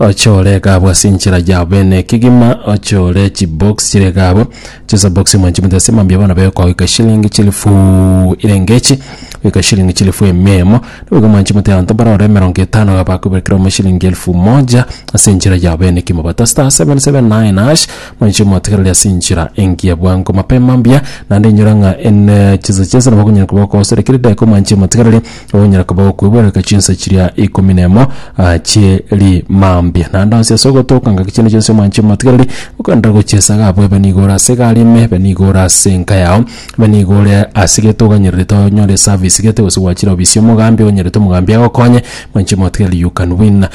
Ochore egabo ase enchera yao bene ekegima, ochore chibox chire egabo chisa box emo nchimute ase mambia bono bekogoika eshilingi chilifu ire engechi goika shilingi chilifu ime emo nigo mwanchimute abanto mbarore emerongo etano iga bakobekerwa ime shilingi elfu moja ase enchera yao bene ekimo but star seven seven nine hash mwanche motigereri ase enchera engiya bwango mapema mbuya naende inyora ng'a en chisa chionsi nabo okonyara koba okogosera kera edageka omwanche motigereri onyare koba gokweboreka chinsa chiria ikomi nemo ah, chie rimambia naende onsi ase ogotoka ngaki chiane chionsi omwanche motigereri okorenda gochiesaga abwo ebe nigo ore ase egari ime ebe nigo ore ase enka yao ebe nigo ore ase gete oganyererete onyore eservice gete gose gwachire ofisi y'omogambi onyerete omogambi agokonye mwanche motigereri you can win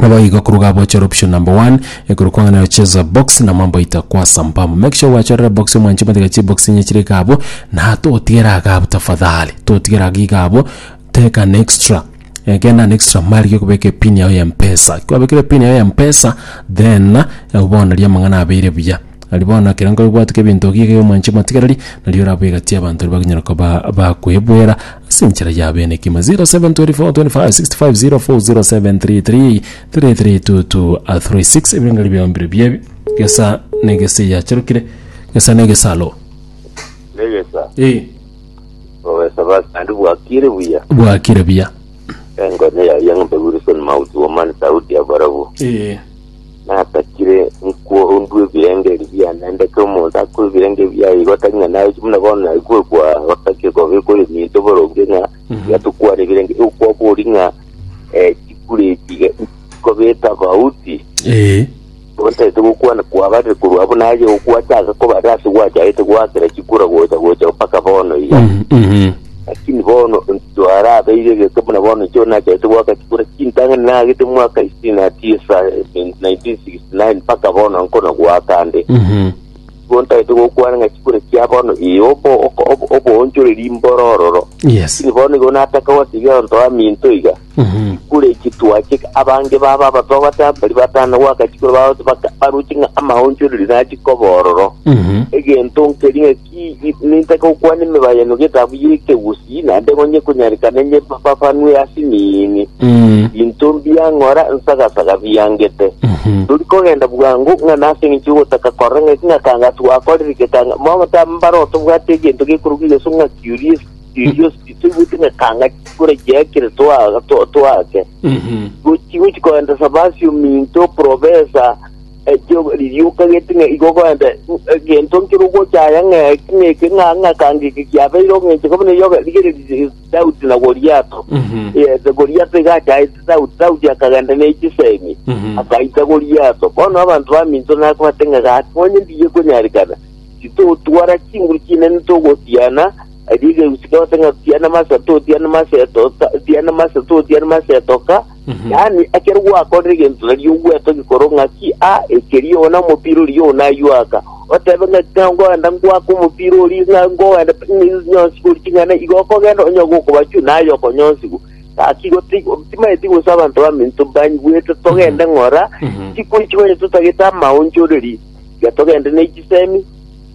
Naboigo koruga abo chora option number one ekero kwang'ana gocheza box na mambo aito akwasa mbamu. Make sure gwachorire box omwancho omatiga chibox enye chire iga abwo na totigere iga abwo tafadhali totigere iga iga abwo take an extra eh, genda an extra mile rigia okobeka epin yago ya mpesa. Kwabekire epin yago ya mpesa then eh, bono riria amang'ana abeire buya. Aria bono, ekero nkobwateka ebinto ebi iga y'omwanchi omotigereri, nario orabe egati y'abanto baria bakonyara koba bakwebwera ase enchera yabo enekima. 072465504073322326 ebirengererio biao mbire pi ebi, egesa na egesa eyacharokire, egesa na egesa alo. Negesa, Eh, obesa basi naende bwakire buya. bwakire buya. Engone yaye eng'umbe Wilson Mauti Woman Saudi ya Barabu. Eh, natakire nikwo ondue ebirenge bia naende ke omonto akwe ebirenge bia igo tari ng'a naye buna bono naye kwe kwa gotake gobe kore minto boronge ng'a Mhm. yatukwane ebirenge okwa bori ng'a eh, chikure echiga kobeta bauti Ee. obatete gokwana kwabarire korwa abo naye gokwacha ase kobarira ase gwachaete gwakera chikura gocha gocha mpaka bono iga Mhm, mhm. Lakini bono intwe arabeire egete buna bono inche oyo nachagete goaka chikura chintang'ani naagete mwaka isini na tisa 1969 mpaka bono nkona goaka ande Mhm. igo ntagete gokwana ng'a chikura chia bono ee obo oko- obo- oboonchoreri mborororo Yes. lakini bono igo nataka gotiga onto aminto iga Mhm. kule chitwache abange baba abatogota bari batana gwaka chikura bagote baka- baruche ng'a amaonchoreri nachi kobororo Mhm. egento nkeri ng'a Nintakokwana emebayano g'etabu y'ekegusii, naende onye konyarekana nyebababanwe ase emiini. Binto mbiang'ora nsagasaga biangete. Tori kogenda bwango ng'a nase engencho y'ogotaka korora ng'aki ng'a kanga twakorire gekanga. Momo tambare otobwate egento gekorokwa egeso ng'a curios- curiosity, toigwete ng'a kanga chikura chiakire twa- twa- twake. Gochi gochi koendesa basi ominto, professor, Ekio ririoka gete ng'a igo ogende, egento nkere ogocha aya ng'a eki ng'eke ng'a ng'a kanga eke kiabeire ogencheka buna eyoga, rigereria Daudi na Goliato. Yes, Goliato iga achaete Daudi, Daudi akagenda ne chisemi, akaita Goliato. Bono abanto baminto nakobate ng'a gaki onye ndiye konyarikana, titotwara chinguru chinene togotiana, erio egeusi kebate ng'a tiana masa totiana masa etoka, tiana masa totiana masa etoka, Yaani, ekero gwakorire egento gari ogwetogia korwa ng'aki, aa, ekeria oyo nomopira oria oyo nayio aka, otebe ng'aki ng'a ngoenda ngoake omopira oria ng'a ngoenda nyonsigwe ore ching'ana igo okogenda onyoge okobachwa naye okonyonsigwa. Gaki igo ti- timanyeti gose abanto baminto banyigwete togende ng'ora chikuri chikonye totagete amaonchoreri, tiga togende ne chisemi,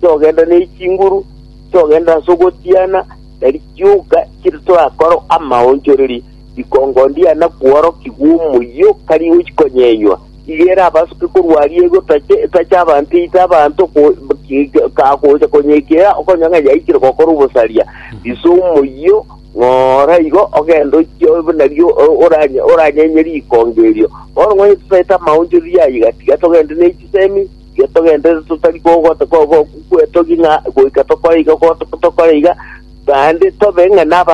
togenda ne chinguru, togenda ase ogotiana, tari chioka chire torakore amaonchoreri. Rikongo ndiana kworokigwa omoyio o kariga gochia konyenywa, iga ere abasuke korwa aria egotacha etacha abanto eite abanto go- ki- ki- ka- gocha konyeikera okonywa ng'a yaikire gokora obosaria. Risa omoyio ng'ora igo ogende ochie obe buna rio o- oranye- oranyenye rikongo erio. Bono ng'onye totaete amaonchoreria aya iga, tiga togende ne chisemi, tiga togende totari ko- go- go- go- gwetogia ng'a goika tokore iga go- tokore iga, naende tobe ng'a naba